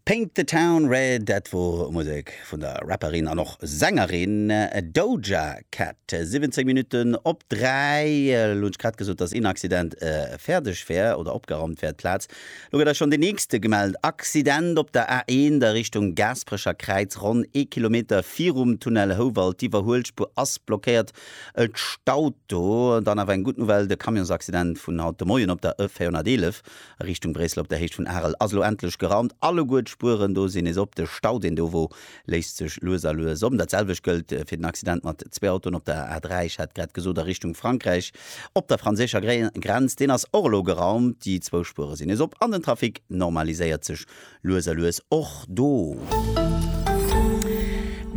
Paint the Town Red, dat wor Musek vun der Rapperin an och Sängerin Doja Cat. 17 Minutten op 3, elo hunn ech grad gesot, dass een Accident fäerdeg wär oder opgeraumt wär, d'Plaz. Elo gëtt eis schonn deen nächste gemellt, Accident op der A1 a Richtung Gaasperecher Kräiz, ronn ee Kilometer virum Tunnel Houwald. D'Iwwerhuelspuer ass blockéiert, et staut do. Dann awer eng gutt Nouvelle, de Camionsaccident vun haut de Moien op der E 411, A Richtung Bréissel op der Héicht vun Arel ass elo endlech geraumt. Alleguer d'Spueren do sinn nees op. De Stau, deen do wor, léist sech lues a lues op. Dat selwecht gëllt fir den Accident mat zwee Autoen op der A3, ech hat grad gesot a Richtung Frankräich op der franséischer Grenz. Deen ass och elo geraumt. Déi zwou Spuere sinn nees op an den Trafic normaliséiert sech Lues a lues och do.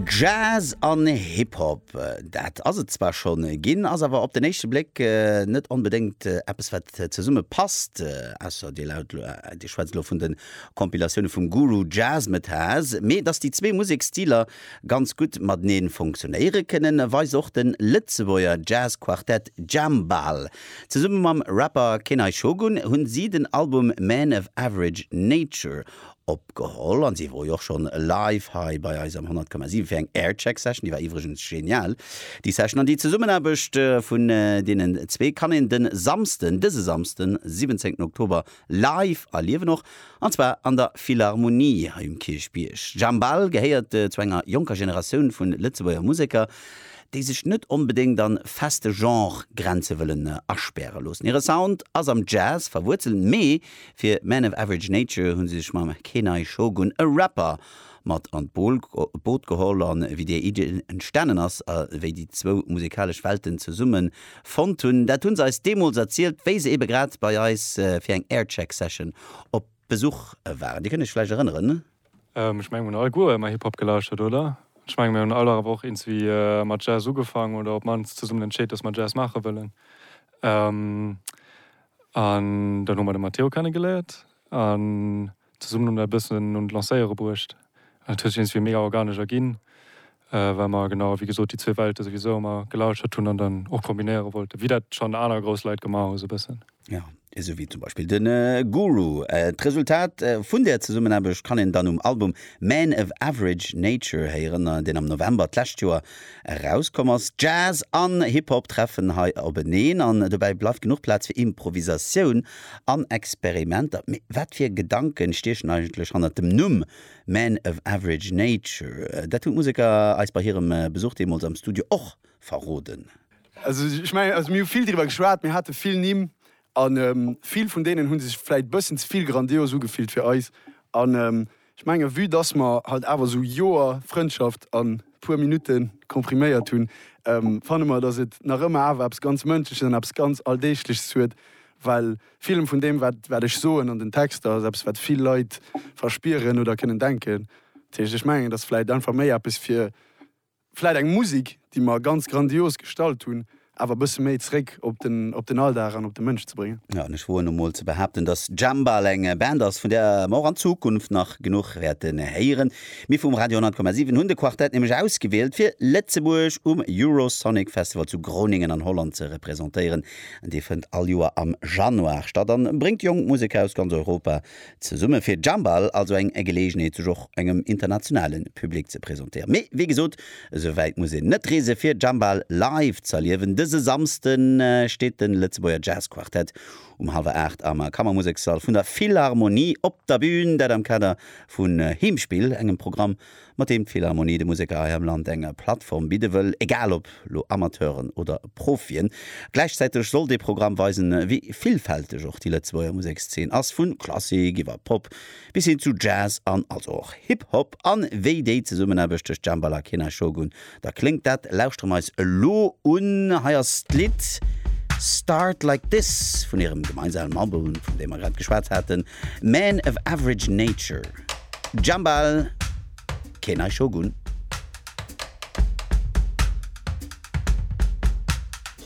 Jazz an Hip-Hop, dat ass et zwar schonn ginn, ass awer op den éischte Bléck net onbedéngt eppes wat zesumme passt, ausser dir laut elo, dir schwätzt elo vun de Compilatioune vum Guru Jazzmatazz. Mee datt déi zwee Museksstiler ganz gutt matenee funktionéiere kënnen, weist och de Lëtzebuerger Jazz-Quartett Jambal Zesumme mam Rapper Kenai Shogun hunn si den Album Man of Average Nature opgeholl an si wor jo och schonn live hei bei eis am 100,7 fir eng Aircheck Session, déi war iwwregens genial déi Session. An déi Zesummenaarbecht vun deenen zwee kann een den Samsden, dëse Samsden 17 Oktober, Live erliewen och, an zwar an der Philharmonie hei um Kierchbierg. Jambal gehéiert zu enger jonker Generatioun vu Lëtzebuerger Museker, déi sech net onbedéngt an feste Genre-Grenze wëllen aspäre loossen. Hire Sound ass am Jazz verwuerzelt, mee fir Man of Average Nature hu se sech mam Kenai Shogun, e Rapper, mat an d'Boot geholl a wéi déi Iddi entstanen ass a wéi déi zwou musikalesch Welten zesummen fonnt hunn, dat hu se eis deemools erzielt, wéi se ebe grad bei eis fir eng Aircheck Session op Besuch waren. Dir kënnt iech vläicht erënneren? Ech mengen mir hunn alleguer ëmmer Hip-Hop gelauschtert, oder? Ech mengen mir hunn all awer och iergendwéi mat Jazz ugefaangen oder op d'mannst zesummen entscheet, dass mer Jazz maache wëllen. An dann hu mer de Matteo kennegeléiert an. Zesummen hunn mer e bëssen un d'Lancéiere bruecht. An et huet sech iergendwéi mega organesch erginn, well mer genau wéi gesot déi zwee Welte souwisou ëmmer gelauschtert hunn an dann och kombinéiere wollten, wéi dat schonn aner grouss Leit gemaach hu sou e bëssen. Jo, esou wéi zum Beispill de Guru. D'Resultat vun där Zesummenaarbecht kann een dann um Album Man of Average Nature héieren, deen am November d'lescht Joer erauskomm ass. Jazz an Hip-Hop treffen hei openeen an dobäi bleift genuch Plaz fir Improvisatioun. an Experimenter. Mee wat fir Gedanken stiechen eigentlech hannert dem Numm Man of Average Nature? Dat hunn d'Museker eis bei hirem Besuch deemools am Studio och verroden. Also ech mengen, also mir hu vill driwwer geschwat, mir hate vill Nimm an vill vun deenen hu sech vläit bëssen ze vill grandios ugefillt fir eis an Ech mengen, vue dass mer halt awer esou Joer Frëndschaft an puer Minutte kompriméiert hunn, fanne mer, dass et nach ëmmer awer eppes ganz Mënschleches an eppes ganz Alldeegleches huet, well villem vun deem, wat wat ech soen an den Texter, ass eppes, wat vill Leit verspieren oder kënnen denken. Dat heescht, ech mengen, et ass vläicht einfach méi eppes fir Vläit eng Musik, déi mer ganz grandios gestallt hunn, awer e bësse méi zréck op den, op den Alldag an op de Mënsch ze bréngen. Jo, an ech woen emol ze behaapten, dass Jambal eng Band ass, vun där mer och an Zukunft nach genuch wäerte héieren. Mir vum Radio 100,7 hunn de Quartett nämlech ausgewielt, fir Lëtzebuerg um Eurosonic Festival zu Groningen an Holland ze representéieren. Dee fënnt all Joer am Januar statt a bréngt jonk Museker aus ganz Europa Zesumme fir Jambal also eng Geleegenheet sech och engem internationale Public ze presentéieren. Mee wéi gesot, esou wäit muss een net reese fir Jambal live ze erliewen. Dëse Samsde steet de Lëtzebuerger Jazz Quartett um hallwer 8 am Kammermusekssall vun der Philharmonie op der Bün, dat am Kader vu Heemspill, engem Programm mat deem d'Philharmonie de Museker hei am Land eng Plattform bidde wëll, egal ob lo Amateuren oder Profien. Gläichzäiteg soll dee Programm weisen, wéi villfälteg och déi Lëtzebuerger Musekszeen ass, vu Klassik iwwer Pop bis hin zu Jazz an also och Hip-Hop, an wéi déi Zesummenaarbecht tëscht Jambalaya Kena, Shogun Da kléngt dat, lauschteren eis elo un, hei ass d'Lidd Start Like This vun hirem gemeinsamen Album, vun deem mer grad geschwat haten, Men of Average Nature, Jambal, Kenai Shogun.